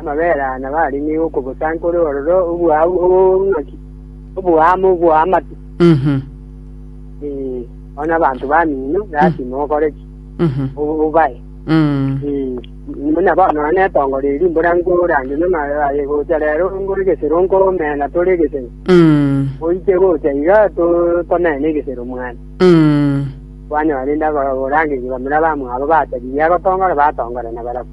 Amabere aya nabo aria nigo okobosankore ororo obwabu obong'aki, oboamo bw'amatu. Mhm. Ee, bono abanto bamino gati mokore ki? Mhm. Obo- Obae. Mm. Ee, buna bono nonye netongo ria rimbora nkorandia n'amabere aye gocha rero ngore egesero nkomena tore egesero. Mm. Oike gocha iga to- tomene egesero mwane. Mm. Kwanyora rende abarangeria bamura abamwabo bataririe agotongora batongorana barabwo.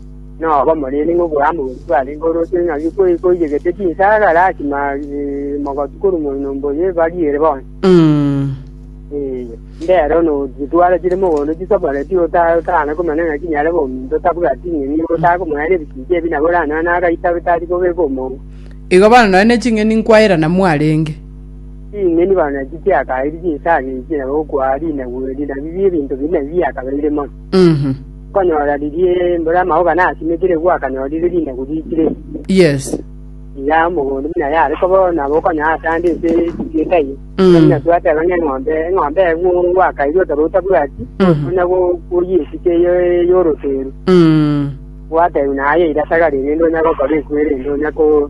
Nobomonene ng'a oborambe bwaito bwarenge ore otieno naki koiyegete chinsara gaki mogotu korwa moino mboyo ebariere bonsi. Mbero notware chire mogondo chisoboreti otana komanya ng'aki nyare bominto otabwati ing'eni otare komonya ere ebisinki ebi nabo oranyore nonya agaita tari kobeka omouwe. Igo bono nonya ne ching'eni nkwairana mwarenge. Ching'eni bono nachi chiakaeiri chinsara echi nabo okwaa rinabweri nabi ebinto biria nabi biakabeire mono. Mhm. Okonyora riria mbura amauga nasimekire igwe akanyorire rinagu riikire Yes. ya omogondo buna yare kobo nabo okonyora ase ande ase ekigieka eye Mm. buna twateba ng'a eng'ombe eng'ombe egwo gwakaire otaba otabwati Mhm. buna go- goyia esike ye- y'oroteru Mm. gwateru naye irasagarire ende onya gokora ekwere ende onya ko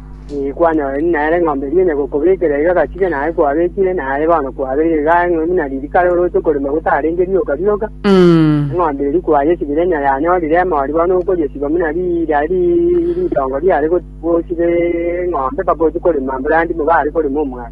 Inki kwanyorire? Nere eng'ombe eria onya gokobekera iga gachire naye kwabekire, naye bono kwabeire igaa ng'a buna ririkare oroche okorema gotarenge rioka rioka. Eng'ombe eria kwayesibire onya yanyorire emori bono okoyesiba buna riria ri- ritongo riare go- gosiba eng'ombe mpaka ochie korema mburanti nigo are korema omwata.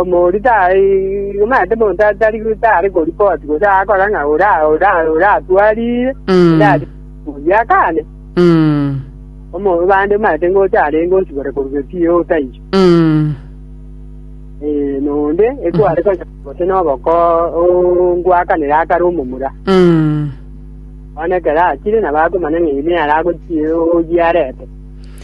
Omorito omanyete monto tari tari koripoti gose agakora ng'a ora ora oratwarire Mm. ndari oyio akane Mm. omo bande omanyete ngocha arenge osibore korwa gesiyo otaiyo Mm. Eh, nonde ekware konya gose noboko ngwakanire akare omomura Mm. one ekero achire nabo akomanya ng'a eyio nere agochie oyio arete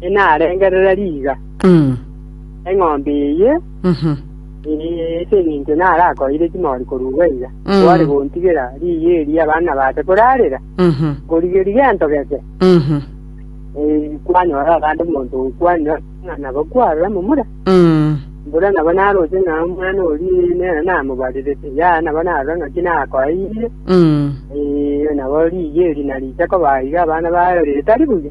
enarengerere riiga, Mm. eng'ombe eye Mhm. eh, ase eng'encho narakoire chimori korugwa iga, Mm. kware gontigera riiga eri abana baase korarera, Mhm. korigeri gento geke, Mhm. eh, kwanyora abande omonto okwanire ng'a nabo kwarora momura, Mm. mbura nabo naroche ng'a omwana oria nere namobarirete, yaya nabo narora ng'aki nakoeire, Mm. eh, nabo riiga eri nariche koba iga abana barerete tari buya.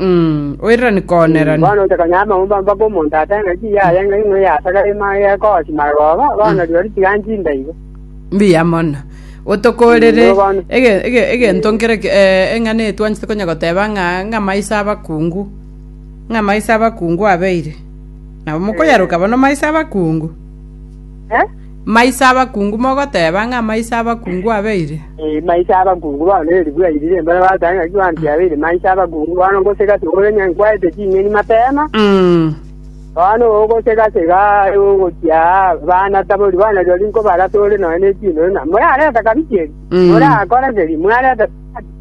Mm, oirani koonerani. Bono otokonyara amagumba mpaka omonto atare ng'a ki yaye ng'a ing'we yasakara ema yekogosi maroba, bono rirorio tiga nchinde igo. Mbuya mono. Otokorere Mm, bono. ege- ege- egento nkere ki- eh, eng'ana eye twanchete konya goteba ng'a ng'a maiso abakungu ng'a maiso abakungu abeire nabo mokoyaroka bono maiso abakungu Eh? Maiso abakungu mogoteba ng'a maiso abakungu abeire? Ee, maiso abakungu baoneretie bwairire, mbare bagoteba ng'a Yohana tiabeire maiso abakungu. Bono ngosega sega ore ng'a nkwarete ching'eni mapema, bono ogosega sega aye ogochia aa, abana tabori bono rirorio nkobarase ore nonya ne chindori, na morareta kabichiri, morakore keria, mwareta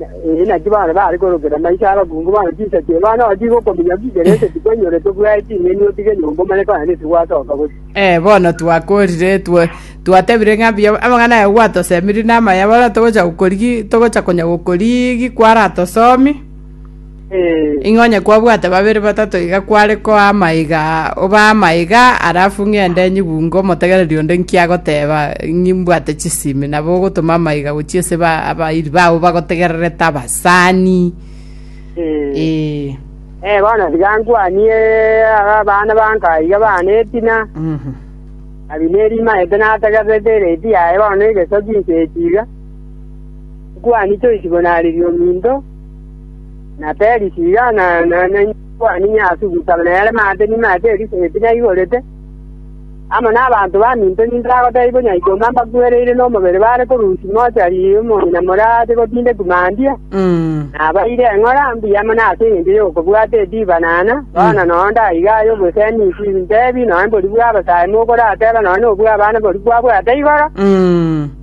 Ee, naki baane bare korokera maiso abakungu bane chinsacha ebano abato igo okominya gwikere gose tikwenyorete bwaye ching'eni otige enyomba omanye kona nesi gwasoka gose. Eh, bono twakorire twe twatebire ng'a mbuya amang'ana aye gwatosemiri namaya bono togocha gokori gi togocha konya gokori gi kwaratosomi. Ng'a onye kwabwate babere batato iga kware koa amaiga, obaa amaiga, alafu ng'ende nyibunge omotegereri onde inki agoteba, ng'i mbwate chisimi, nabo ogotoma amaiga gochia ase ba abairi babo bagotegererete abasani. Ee. Eh, bono tiga nkwanie aba abana banka iga bane etina, Mhm. Abineri maete nategererete eredii yaye bono na egesoki inche echi iga, nkwanie choisi bonareria ominto, na Perisiga, na Yoanani ase ogosaba, na Herema ase enyima ya Perisiga pi naigorete, amo nabanto baminto minto bagotebiwa ng'a ikoomba mbakwereire nomobere bare korusia Mose aria ime omong'ina more aase gotinda etumandia, nabaeire eng'ora mbuya mono ase engencho y'okobwata ediba, na ana, bono nonya ndaiga aye obosemi inki intebi, nonya mborie bw'abasae mokorateba, nonya nobw'abana boria kwabwate igoro.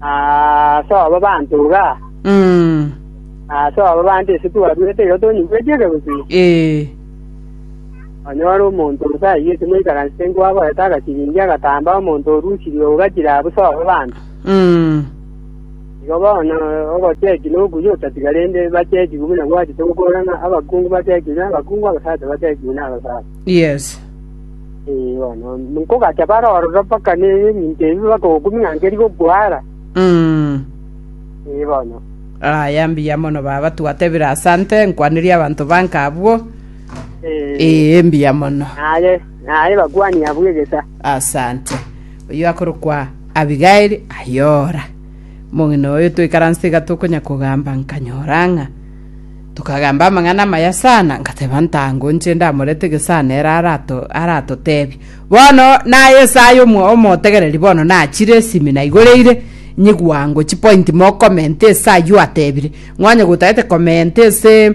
Ase obo abanto iga, Mm. ase obo abanto ise twarwete iga tonyigweti ekegutu, Eh. onyore omonto gose ayio timoikaransete nkwagoeta agasiringi agatamba omonto orusirie ogachire abwo ase obo abanto. Mm. Igo bono ogocheki nokuya otatiga rende bachekigwe buna gwachete gokora ng'a abakungu bachekigwe nabakungu abasacha bachekigwe nabasacha. Yes. Eh, bono nkogacha bare ororo mpaka neminto ebi bakogokumia ng'a nkeri gokwara. Mm. Eh, bono. Aya mbuya mono baba twatebire asante nkwanire abanto banka abwo. Eh, Ee mbuya mono. naye, naye bakwania abwo egesa. Asante. Oyo akorokwa Abigail ayora. Mong'ina oyo toikaranse iga tokonya kogamba nkanyora ng'a Tokagamba amang'ana amaya sana, ngateba, Ntango nche ndamorete gesana ere aratotebie. Bono naye esaya omotegereri bono nachire esimi na igoro eire nyigwa ngo chipointi mokomenti ese ayio atebire. Ng'onye gotagete komenti ese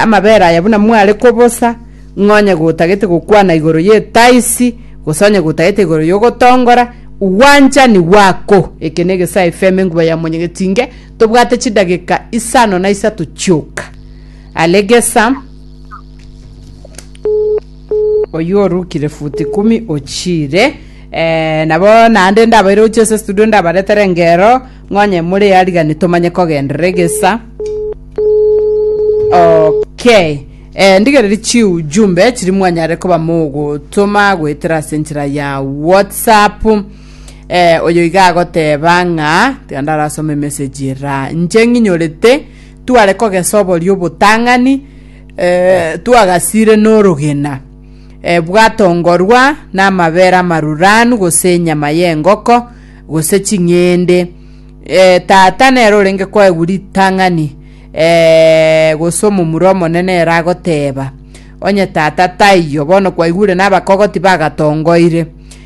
amabere aya buna mware kobosa, ng'onye gotagete gokwana igoro yetaisi, gose onye gotagete igoro yogotongora, gwanchani gwako. Eke negesaya efemu enguba ya monyegetinge. Tobwate chidageka isano na isato chioka. Aregesa oyio orukire futi kumi ochire eh, nabo naende ndabaire gochia ase studio ndabaretere ngero ng'onye more arigani tomanye kogenderera egesa okay eh, ndigereri chiujumbe chiri mwanyare koba mogotoma goetera ase enchera ya whatsapp Eh, oyo iga agoteba ng'a tiga ndarasoma emessage era nche ng'inyorete tware kogesa oboria obotang'ani eh, twagasire n'orogena eh, bwatongorwa n'amabere amaruranu gose enyama y'engoko gose ching'ende eh, tata nere orenge kwaegwa ritang'ani eh, gose omomura omonene ere agoteba onye tata taiyo bono kwaigure n'abakogoti bagatongoire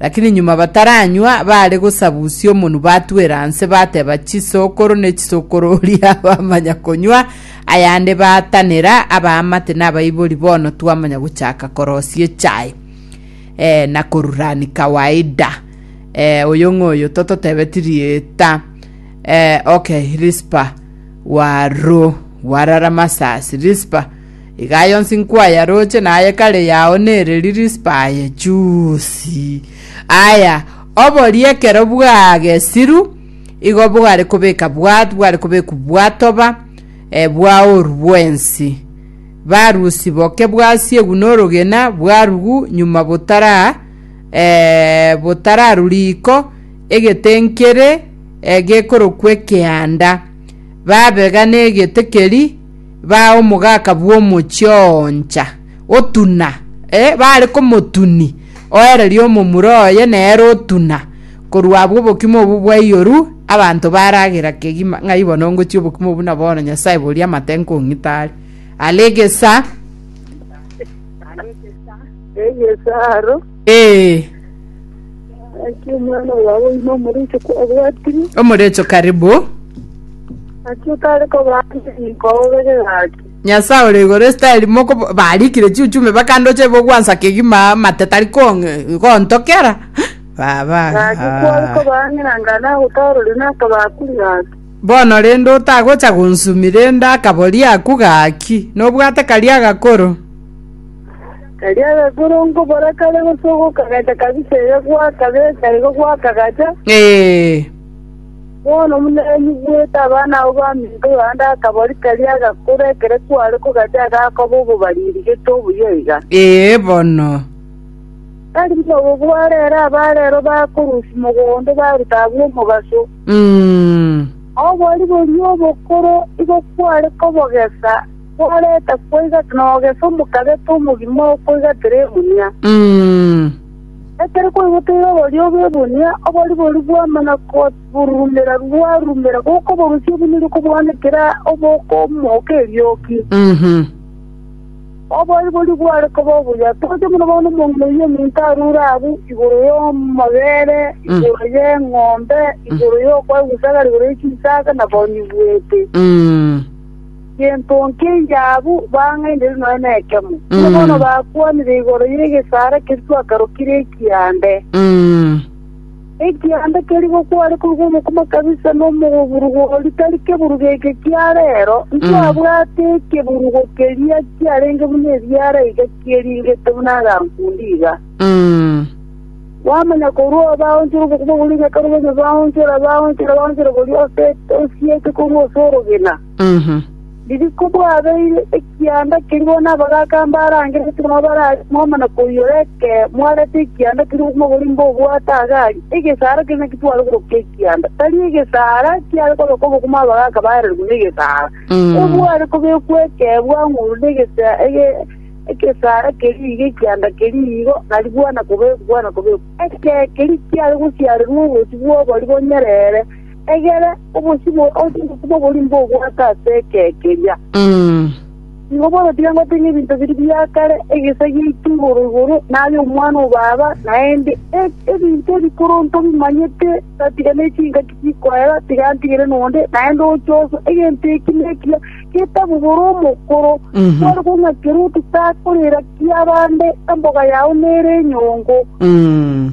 Lakini nyuma bataranywa, baare gosabusia omonwa batwera inse, bateba chisokoro ne chisokoro oria bamanya konywa ayande baatanera, abaamate na abaibori bono twamanya gochaka korosia echae eh, na korurani kawaida. Eh, oyo ng'oyo tototebeti rieta eh, okay, Rispa waro warara masasi Rispa Iga aye onsi nkwayaroche, na aye kare yao nere Rispa aye chuusi. Aya, oborie ekero bwagesiru, igo bware kobeka bwat, bware kobekwa bwatoba, eh, bwaoru bwensi. Barusi boke bwasiegu norogena bwarugu nyuma botara eh, botararu riko egete nkere eh, gekorokwa ekeanda. Babega negete keri baa omogaka bw'omochie oo oncha, otuna, ee, baare komotuni, oererie omomura oye nere otuna, korwa abwo obokima obwo bwaiyoru, abanto baragera kegima ng'ai bono ngochia obokima obwo na bono Nyasae boria amate nkong'ita are. Are egesa. Are egesa aro. Ee, Naki omwana owawe oino omoreche kwabwatire, omorecho karibu. naki otare kobaancha ninko obege gaki. Nyasae ore igoro esitari moko barikire chiuchume bakandocha ibo gwansa kegima mate tari kong- gontokera baba Gaki kware ah. kobaanera anga nagotorore nakabakuri gaki. bono rende otagocha gonsumi rende akabori aku gaki nobwate karia agakoro Erio agakorongo baria kare gosoa gokagacha kabisa erio gwakabeka igo gwakagacha, bono buna enyugwete abana abwo baminto Yohana akabori karia agakora ekero kware kogacha agakoba obobani rigete obuya iga. Ee, bono. Tari buna obo bware ere abarero bakorusia mogondo baruta abwo omobaso. Mm. Obori boria obokoro igo kware kobogesa Kwareta koigata nogesa omokabete omogima okoigatera egunia. Ekero kwaigotire oboria bw'egunia, obori boria bwamana korurumera rwarurumera gokoborusia buna erio kobwanekera obokomoka erioki. Obori boria bware koba obuya toche buna bono omong'ina oyio ominto arure abwo igoro y'amabere, igoro y'eng'ombe, igoro y'okwaigusagara, igoro ye chinsaga, na bonyi bwete. Gento nk'eiyaabu bang'ainire noe nekemo, inwe bono bakwanire igoro y'egesaara keria twakarokire ekiaande. Mm. Ekiaande keria gokware korwa omokoma kabisa na omoburugo oria tari keburugo eke kia reero, ntwabwate ekeburugo keria kiarenge buna ebiara iga kieringete buna agankundi iga. Mm. Bwamanya korwa obaonchora obokima boria ng'ake robe onye baonchora, baonchora, baonchora boria ose osiete korwa ase orogena. Riria kobwabeire ekianda kerimo nabagaaka mbare ange naetano barare momana koiyora ekero mwarete ekianda keria omogori mbobwate agari, egesaara keria naketware koroka ekianda, tari egesaara kiare koroka obokima abagaaka baererigwe negesaara. Ebware kobekwa ekero bwang'urwa negesaara keria igo ekianda keria igo, nari bwana kobekwa bwana kobekwa. Ekero keria kiare gosiarerwa obosie bw'obori bonyerere. Egera obosimo ase obosimo oboria mbobwate ase ekee keria. Mm. Igo bono tiga ngotenge ebinto biria bia kare, egesa giaito igoro igoro, naye omwana o baba, naende e- ebinto ebikoro ntobimanyete, tatiga ne chingaki chikoera, tiga antigere nonde, naende ochoso egento eki na ekiya getabubora omokoro, Mhm. kware kong'akera ototakorera kiabande, emboga yao nere enyongo. Mm.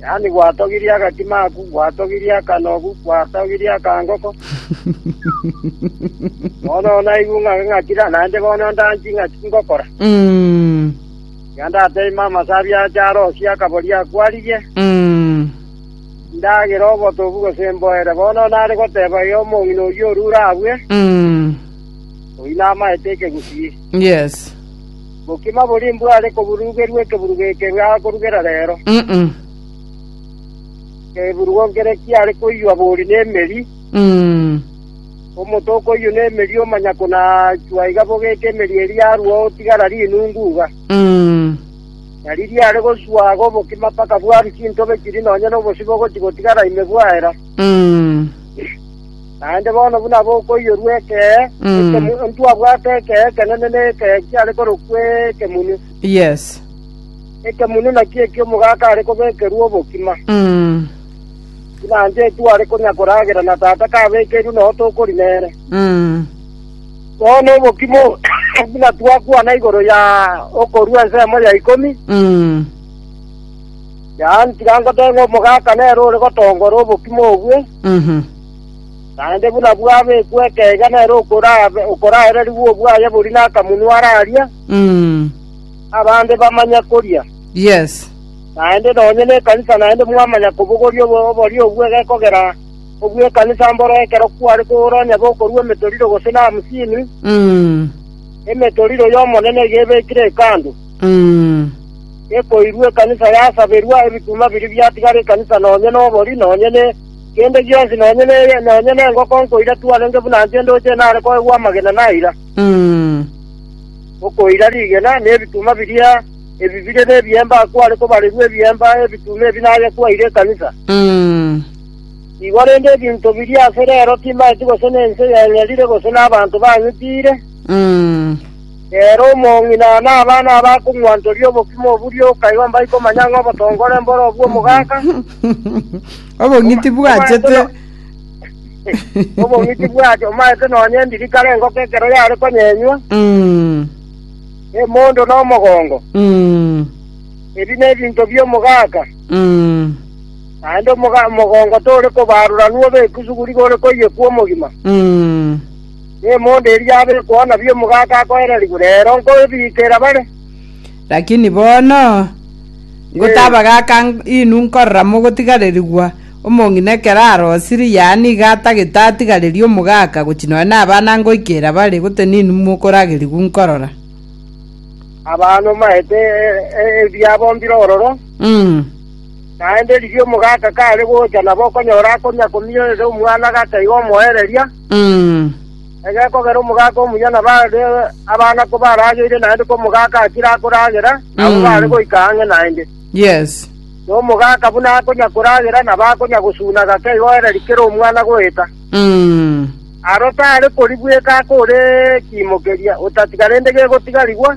yaani gwatogirie agatimaku, gwatogirie akanogu, gwatogirie akangoko. bono naigwe ng'a ng'akira, naende bono ndanchi ng'a tingokora. Mm. Iga ndateima amasabi ache arosie akabori akwaririe, Mm. ndagera obotobu gose mboere. Bono nare goteba iga omong'ina oyio orure abwe, Mm. oyio namaete ekegusii. Yes. Bokima boria imbware koburugerwa ekeburugo eke akorugera reero, ekeburugo nkere kiare koiywa bori nemeri, omote okoiywa nemeri omanya konachwa iga bogeka emeri eria yarua otigara rinungu iga. Na riria are gosua iga obokima mpaka bwarwa chintobe chiria nonya nobosio bogochi gotigara ime bwaera. Naende bono buna bokoiyorwa ekee ekemo, ntwabwate ekee ekenene na ekee kiare korokwa ekemunu. Yes. Ekemunu nakio eki'omogaka are kobekerwa obokima. Mm. Buna inche etware konya koragera na Tata kabekeirwe noo tokori nere. Mm. Bono obokima obo buna twakwana igoro ya okorua ensemo ya ikomi, Mm. Yaan tiga ngotebe ng'a omogaka nere ore gotongora obokima obwe, Mhm. naende buna bwabekwa ekeiga nere okorabe okoraererigwa obwaye bori nakamunwa ararie, Mm. abande bamanye koria. Yes. Naende nonye nekanisa naende mwamanya kobogoria obo- oborio obwo egekogera obw'ekanisa mboro ekero kware kogora onye bokorua emetoriro gose na hamsini, Mm. emetoriro y'Omonene iga ebekire hekalu. Mm. ekoirwa ekanisa yasaberwa, ebituma biria biatigara ekanisa nonya nobori, nonya ne kende gionsi, nonya ne nonya nengoko nkoira tu arenge buna inche ndoche nare koegwa amagena na aira. Mm. Okoira rigena nebituma biria ebi bire nebiemba akware kobarerwa ebiemba ebituma ebi naye kwaire ekanisa. Mm. Igo rende ebinto biria ase rero timaeti gose nense yeng'erire gose nabanto bang'itiire. Mm. Ere omong'ina na abana abakong'wantoria obokima obo ria okaigwa mbai komanya ng'a obotongore mboro obwo omogaka, Obong'iti bwachete. obong'iti bwacho omaete nonya endiri kare engoko ekero yare konyenywa, Mm, emondo na omogongo. mm, Ebi nebinto bi'omogaka, mm, naende omoga- omogongo tore kobaruranwa obe ekusuguri gore koiyekwa omogima. mm. nemondo eria yabekwa ona bi omogaka akoererigwe, reero nkobiikera bare. Lakini bono ngotabagaka inwe nkorora mogotigarerigwa, omong'ina ekero arosirie, yaani iga atagete atigarerie omogaka, gochia nonya nabana ngoikera bare, gose ninwe mokoragerigwa nkorora. Abanomaete ebiabo mbire ororo, naende riria omogaka kare gocha nabo okonyora akonya komia ere omwana gake iga omoereria. Egekogera omogaka omuya na bare abana kobarageire naende komogaka akire akoragera, nabo bare goika ang'e naende. Yes. Na omogaka buna akonya koragera nabo akonya gosuna gake igo ere rikere omwana goeta. Aro tare koribweka akore kiimokeria, otatiga rende gegotigarigwa,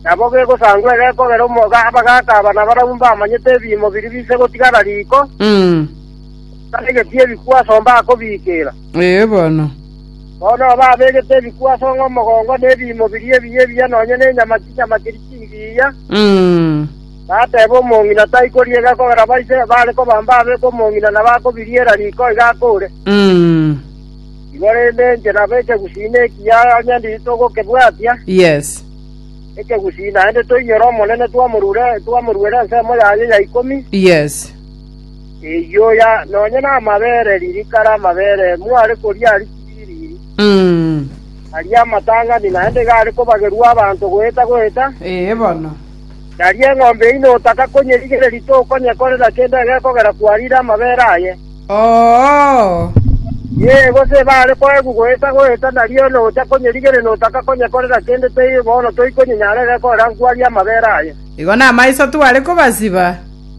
nabo gegosangwa egekogera omoga abagaka aba nabarabwo mbamanyete ebiimo biria bise gotigara riiko. Abegeti ebikwa ase ombakobiikera. Ee bono. Bono aba abegete ebikwa ase ong'o omogongo na ebiimo biria ebiya ebiya nonya ne nyama chinyama chiri chingiya. Bateba omong'ina tai koriega kogera baise bare kobamba abeke omong'ina na bakobiriera riko iga akore. Igo rende inche nabo ekegusii ekiya onye nditogokebwatia. Yes. Ekegusii naende toinyore Omonene twamorure twamoruere ensemo yaye ya ikomi. Yes. Eyioya, nonya namabere ririkare amabere mware koria aria chibiri, aria amatang'ani naende igare kobagerua abanto goeta goeta, nari eng'ombe yaino otaka konyerigereria tokonyekorera kende egekogera kwarire amabere aye. Yee, gose ebare koegwa goeta goeta, nari one ocha konyerigereria notaka konyekorera kende teiyo bono toikonyenyara egekogera nkwarire amabere aye. Igo namaiso tware kobasiba.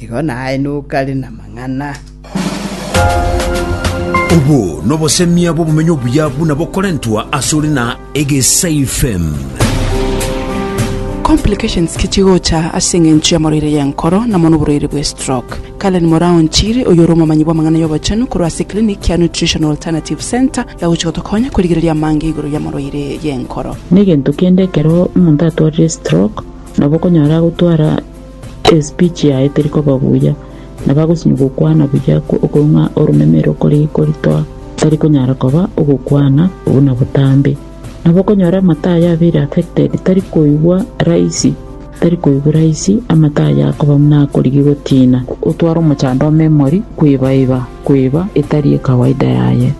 Igo naenuka rin'amang'ana. Obo nobosemia bw'obomenyo obuya buna bokorentwa ase ore na egesaifm. Complications ki chigocha ase eng'encho y'amarwaire y'enkoro na mono oborwaire bwe stroke? Karen Moraon-Chiri, oyore omomanyi bw'amang'ana y'obochenu korwa ase clinic ya Nutritional Alternative Centre yagochia gotokonya korigereria amange igoro y'amarwaire y'enkoro. Negento kende ekero omonto atwarire stroke nabo okonyora agotwara. Espeech yaye teri koba buya, na bagosinywa gokwana buya okoong'a oromeme ere okori koritoa, tari konyara koba ogokwana buna botambe. Nabo okonyora amata aye abeire affected, tari koigwa raisi, tari koigwa raisi, amata aye akoba buna akorigi gotina. Otware omochando o memory kwebaiba kweba etari ekawaida yaye.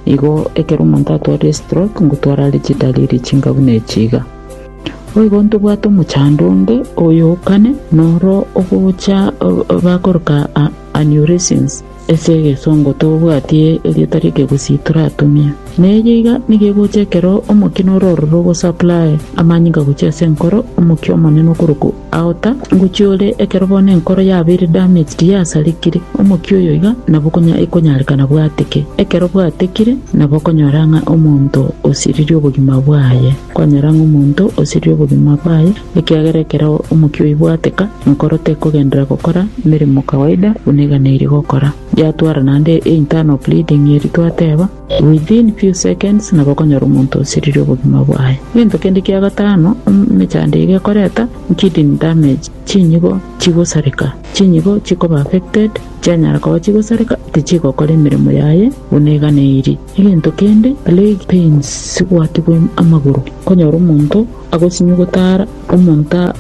Igo ekero omonto atwarire stroke ngotwara arechidaliri chinga buna echi iga. Boigo ntobwate omochando onde oyo o kane, noro ogocha bakoroka Aneurysms, ase egesongo tobwatie erieta rie kegusii toratumia. Na eyio iga nigo egocha ekero omokia noro ororo ogosupply amanyinga gochia ase enkoro omokia omonene okorokwa Aota, ngochia ore, ekero bono enkoro yabeire damaged yasarikire, omokia oyo iga nabo konya ekonyareka nabwateke. Ekero bwatekire, nabo okonyora ng'a omonto osiririe obogima bwaye. Kwanyora ng'a omonto osiririe obogima bwaye, ekiagera ekero omokia oyio bwateka, enkoro tekogenderera gokora meremo kawaida buna eganeirie gokora. Yatwara naende e internal bleeding eri twateba. Within few seconds nabo okonyora omonto osiririe obogima bwaye. Gento kende kia gatano emechando iga ekoreta, kidney damage, chinyigo chigosareka. Chinyigo chikoba affected, chianyara koba chigosareka, tichigokora emeremo yaye buna eganeirie. Egento kende, leg pains, gwatigwa amagoro. Okonyora omonto agosinyugutara, omonto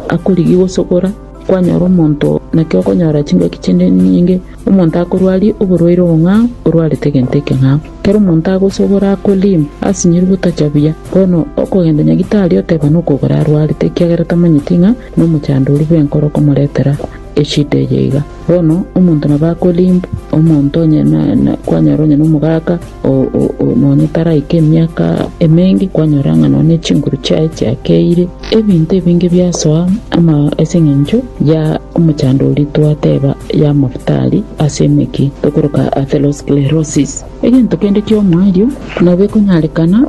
akorigia gosogora. Kwanyora omonto, naki okonyora chingaki chinde nyinge, omonto akorwaria oborwaire obong'ao, orwarete egento ekeng'ao. Ekero omonto agosogora akoriima, asinyirwe otacha buya, bono okogenda nyagitari oteba nokogora arwarete, ekiagera tamanyeti ng'a nomochandori bw'enkoro okomoretera eshida eye iga. Bono omonto nabo akoriimbu, omonto onye na, na, kwanyora onye nomogaka, Oo-oo-oo, nonya taraika emiaka emenge, kwanyora ng'a nonya chinguru chiaye chiakeire, ebinto ebinge biasoa ama ase eng'encho ya omochandori twateba y'amafuta aria ase emeki, tokoroka atherosclerosis. Egento kende ki'omoerio nabo ekonyarekana.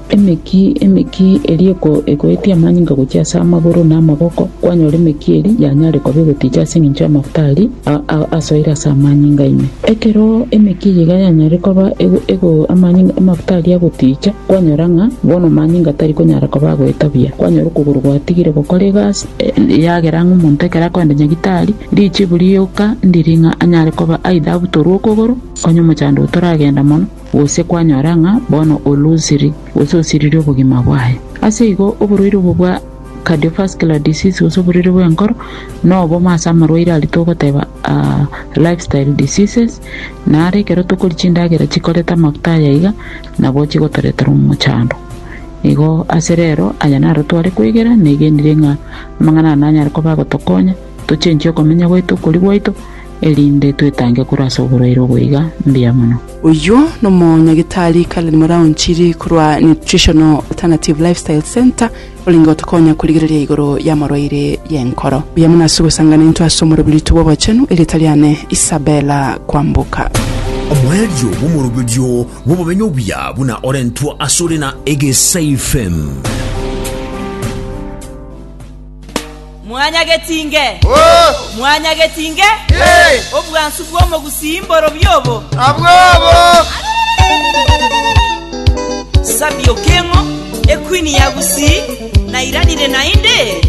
Emeki, emeki eria ekoetia amanyinga gochia ase amagoro na amaboko, kwanyora emeki eria yanyare koba egoticha ase engencho y'amafuta aria asoire ase amanyinga ime. Ekero emeki eyio iga yanyare koba amafuta aria agoticha, kwanyora ng'a bono amanyinga tari konyara koba agoeta buya. Kwanyora okogoro gwatigire gokora egasi, eyagera ng'a omonto ekero akogenda nyagitari, richibu rioka ndiri ng'a anyare koba aidha abutorwe okogoro, onye omochando oyo toragenda mono. gose kwanyora ng'a bono oloosiri gose osiririe obogima bwaye. Ase igo, oborwaire obo bwa cardiovascular disease gose oborwaire bw'enkoro nobomo ase amarwaire aria togoteba aa lifestyle diseases, na are ekero tokoria chindagera chikoreta amafuta aya iga nabo chigotoretera omochando. Igo ase rero aya naro tware kwegera, negenire ng'a amang'ana aya nanyare koba agotokonya. Tochenchie okomenya gwaito okoria gwaito, erinde twetange korwa ase oborwaire oboiga mbuya mono. Oyio nomonyagitari Karen Muraunchiri korwa Nutritional Alternative Lifestyle Centre orenge gotokonya korigereria igoro y'amarwaire y'enkoro. Mbuya mono ase ogosangana intwe ase omoroberitwe bw'obochenu, erieta riane Isabella Kwamboka. Omoerio bw'omoroberio bw'obomenyo obuya buna orentwa asore na Egesaifem. Mwanyagetinge, mwanyagetinge obwansu bw'omogusii mborobio obo. Sabio keng'o ekwini ya gusii nairanire naende?